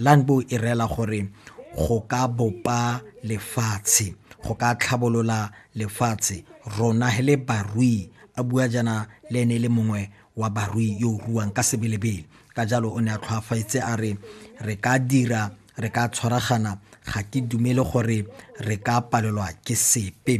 Landbou e reela gore go ka bopa lefatshe, go ka tlhabolola lefatshe, rona he le barui, a bua jaana le ene e le mongwe wa barui yo o ruang ka sebelebele. Ka jalo o ne a tlhoafetse a re re ka dira, re ka tshwaragana ga ke dumele gore re ka palelwa ke sepe.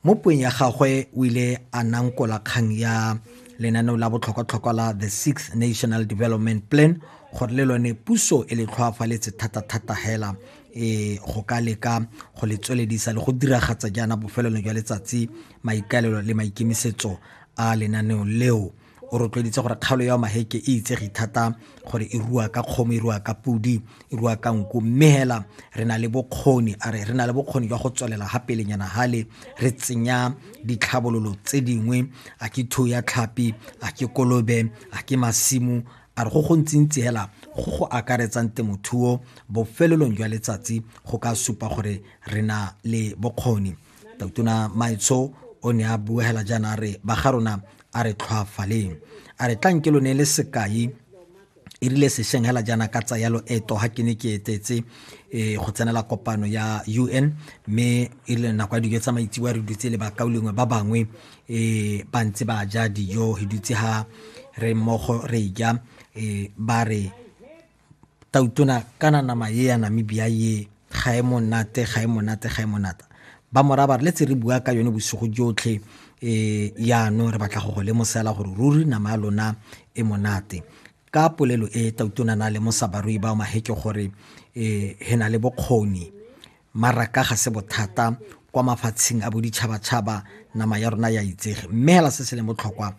mo puong ya gagwe o ile a nankola kgang ya lenaneo la botlhokwatlhokwa la the sixth national development plan gore le lone puso e le tlhoafaletse thata-thata hela e go ka leka go le tsweledisa le go diragatsa jaana bofelelo jwa letsatsi maikaelelo le maikemisetso a lenaneo leo o rotloeditse gore kgaolo ya maheke e itsege thata gore e rua ka kgomo e rua ka podi e rua ka nku mme hela re na le bokgoni a re re na le bokgoni jwa go tswelela ga pelenyana hale re tsenya ditlhabololo tse dingwe a ke thu ya tlhapi a ke kolobe a ke masimo a re go gontsintsi hela go go akaretsang temothuo bofelelong jwa letsatsi go ka supa gore re na le bokgoni Tautona Maetsho o ne a buegela jaana a re ba ga rona a re tlhwaafaleng a re tlanke lo ne le sekai e rile sešeng hela jaana ka tsaya loeto ga ke ne ke etetse um go tsenela kopano ya u n mme e rile nako ya dijo tsa maitseboa re dutse le bakao lengwe ba bangwe um ba ntse ba ja dijo re dutse ga re mmogo re ja um ba re Tautona kana nama ye ya Namibia ye ga e monate ga e monate ga e monata ba moraba re letse re bua ka yone bosigo jotlhe um yaanong re batla go go lemosela gore ruri nama ya lona e monate ka polelo e tautona na lemosa barui bao maheke gore um he na le bokgoni Maraka ga se bothata kwa mafatsheng a boditšhabatšhaba nama ya rona ya itsege mme hela se se leng botlhokwa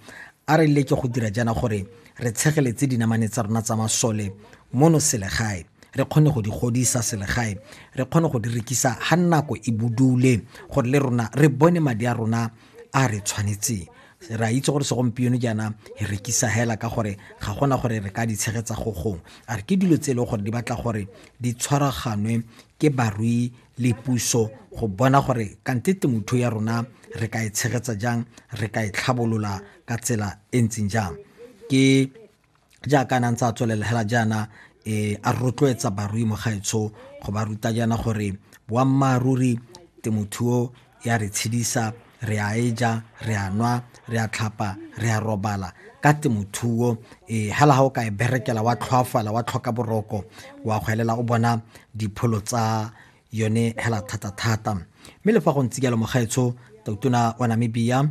a re leke go dira jaana gore re tshegeletse dinamane tsa rona tsa masole mono selegae re kgone go di godisa selegae re kgone go di rekisa ga nako e budule gore le rona re bone madi a rona a re tshwanetseng ra itse gore segompieno jaana e rekisa hela ka gore ga gona gore re ka di tshegetsa go gong a re ke dilo tse e leng gore di batla gore di tshwaraganwe ke barui le puso go bona gore kante temothuo ya rona re ka e tshegetsa jang re ka e tlhabolola ka tsela e ntseng jang ke jaaka nang tsa tswelela hela jaana e a rotloetsa barui mo gaetsho go ba ruta jaana gore boammaaruri temothuo ya re tshedisa, re a e ja, re a nwa, re a tlhapa, re a robala ka temothuo e hela ga o ka e berekela wa tlhoafala wa tlhoka boroko wa go elela o bona dipholo tsa yone hela thata-thata mme le fa go ntse jalo mogaetsho totona wa namibia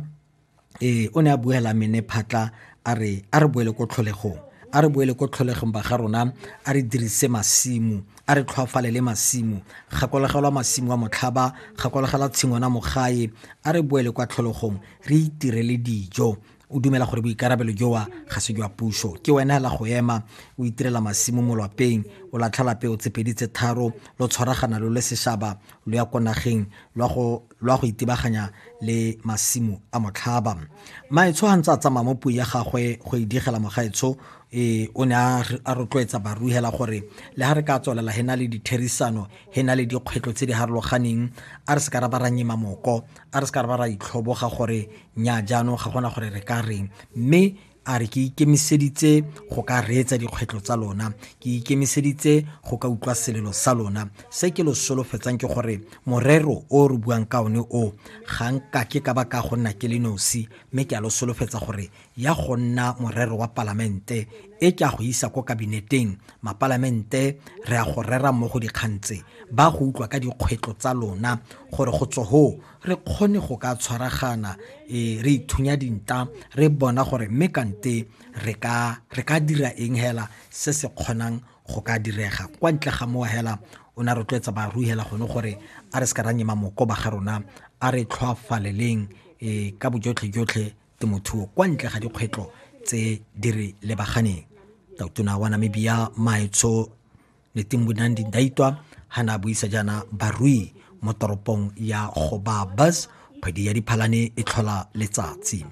ee o ne a buela mene phatla a re a re boele ko tlholegong a re boele ko tlholegong ba ga rona a re dirise masimo a re tlhwafalele masimo gakologelwa masimo a motlhaba gakologelwa tshingwana mogae a re boele kwa tlholegong re itirele dijo o dumela gore boikarabelo jowa ga se jwa puso ke wena hela go ema o itirela masimo mo lwapeng o latlhela peo tsepedi tse tharo lo tshwaragana lo le seshaba lo ya ko nageng lwa go lwa go itebaganya le masimo a motlhaba maetsho ga ntse a tsamaya mo puo ya gagwe go e digela mogaetsho e o ne a rotloetsa baruhela gore le ga re ka tswelela he na le ditherisano he na le dikgwetlho tse di harologaneng a re se ka ra ba ra nyema moko a re se ka ra ba ra itlhoboga gore nya jaanong ga gona gore re ka reng mme A re, Ke ikemiseditse go ka reetsa dikgwetlho tsa lona. Ke ikemiseditse go ka utlwa selelo sa lona. Se ke lo solofetsang ke gore morero o re buang ka one o, ga nka ke ka ba ka go nna ke le nosi, mme ke a lo solofetsa gore ya go nna morero wa Palamente, e ke a go isa ko Kabineteng, Mapalamente re a go rera mmogo dikgang tse, ba go utlwa ka dikgwetlho tsa lona gore go tswa hoo re kgone go ka tshwaragana e re ithunya dinta re bona gore mme kante re ka re ka dira eng hela se se kgonang go ka direga kwa ntle ga mowa hela o ne a rotloetsa barui hela gone gore a re se ka ra nyema moko ba ga rona a re tlhoafaleleng e ka bojotlhe jotlhe temothuo kwa ntle ga dikgwetlho tse di re lebaganeng tautona wa namibia maetsho Letimbunang Dindaitwa ha na buisa jaana barui mo toropong ya Gobabas kgwedi ya Diphalane e tlhola letsatsi.